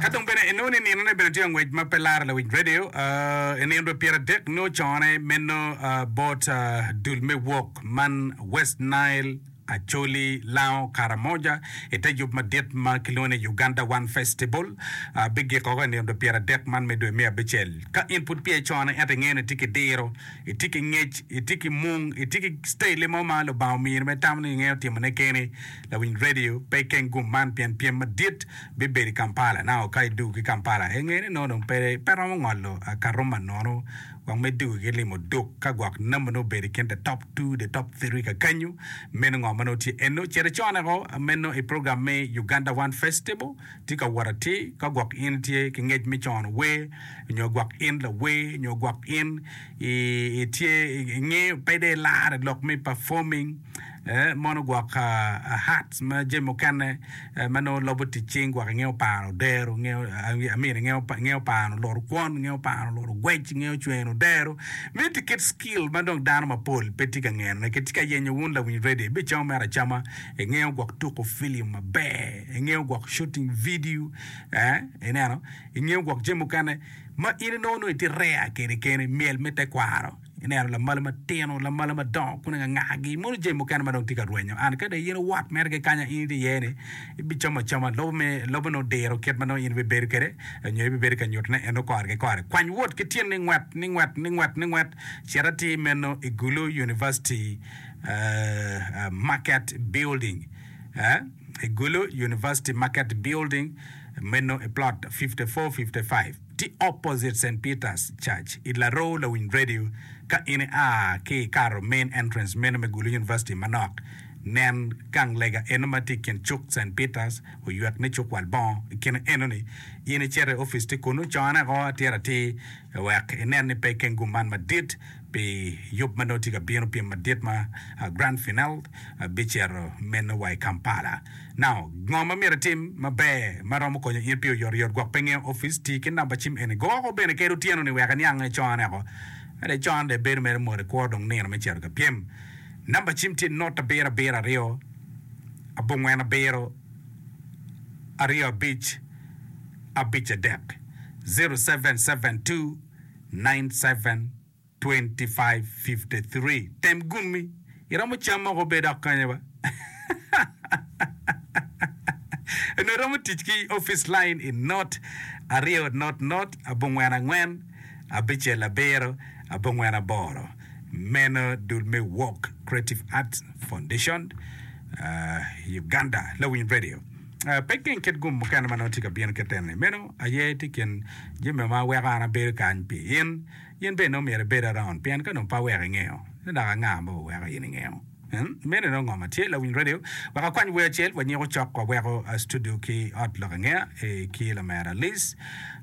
Ka dong bene inongo ni ninone bene tye ka ngwec ma pe laro lawic redio, i nino dwe pyeradek nio cone meno bot dul me wok man West Nile, Acholi, Lango, Karamoja, i te yub madit ma kilwongo ni Uganda One Festival, bigiko woko i nino dwe pyeradek man me dwe me abicel. Ka in pud piye cone ento ingeyo ni itye ki diro, itye ki ngec, itye ki mung, itye ki citaille mo ma Lubanga omini ma itamo ni ingeyo timone keni, Lawiny redio pe i keng gum man pien pyem madit bibedo i Kampala. Naka ka idwogo ki Kampala, ingeyo ni nongo dong pe romo ngolo akato ma nono wek me dugo ki limo duk. Ka gwok namba nongo obedo i kin the top two, the top three kakanyo, meno ngo ma nongo tye eno? Cit iconeko meno i program me Uganda One Festival. Tye ka wot atir. Ka gwok in itye ki ngec me cono wer nyo gwok in lawer nyo gwok in itye ingeyo pe dong ilaro lok me performing, mono gwok Hertz ma jami mukene ma nongo lobo tic cing gwok inge oparo odero inge amini inge oparo loro kwon inge oparo loro gwec inge ocweno odero miti kit skill ma dong dano mapol pe tye ka ngene ki tye ka yenyo wun lawiny radio ibicamo mere acama inge gwok tuko film maber inge gwok shooting video ineno inge gwok jami mukene ma in inongo nongo itye rare kede kene myel me tekwaro Ineno lamalo matino, lamalo madongo kun ingangagi, mono jami mukene ma dong tye ka rwenyo. An ka dong in iwot mere ki kanya in itye iye-ni, ibicamo acama lobo me lobo ni odiro kit ma nongo in ibibedo kwede, nyo ibibedo ka nyutone en okore ki kore. Kwany wot ki tyeni ni ngwet, ni ngwet, ni ngwet, ni ngwet, cit atir meno i Gulu University Market Building, i Gulu University Market Building meno i Plot 5455. Ti opposite Saint Peter's church i Laroo lawiny radio ka in i a ki i karo main entrance meno me Gulu University manok nen gang lega eno ma ti i kin cuk Saint Peter's oywek ni cuk wal bongo i kine eno ni in i cito i office ti kunu cone o atir atir wek i nen ni pe i keng gum man madit pi yub ma nongo tye ka bino, pyem madit ma Grand Final bicito meno wa i Kampala. Now, ngo ma myero itim maber ma romo konyo in pi oyotoyot gwok pe ngeyo opic? Ti ki namba cim eni. Go woko bene kadi otyeno ni wek iniang nge con eko. Kadi con dong ibedo mere mot ikwo dong nino me cito ka pyem. Namba cim tye not abiro abiro aryo abongwen abiro aryo abic abic adek, zero seven seven two 972553 tem gummi iromo cam moko be dok kanya ba onongo iromo tic ki office line i not aryo not not abongwen angwen abicel abiro abongwen aboro meno dul me walk creative arts foundation Uganda lawiny radio. Pe geng kit gum mukene ma nongo tye ka bino kite-ni. Meno aye tye i kin jami ma weko an abedo kany pi in. In bene nongo myero ibed around, pien ka dong pe aweko ingeyo, ci dok anga ma oweko in ingeyo? Meno nongo ngo ma tye? Lawiny radio, wek akwany wer acel wanyiko cok waweko studio ki ot lok angeya ki lamera Liz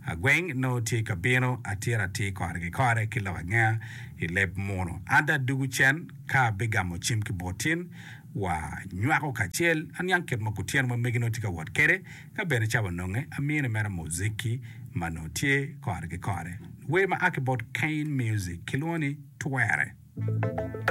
Agweng nongo tye ka bino atir atir kore ki kore ki lok angeya i leb muno. An dong adugu cen ka abigamo cim ki bot in. wa nywako kacel. Aniang kit ma kutyeno ma megi nongo tye ka wot kwede, ka bene ca wanonge. Amine mere muziki ma nongo tye kore ki kore. Wer ma a ki bot Cain Music kilwongo ni Twere.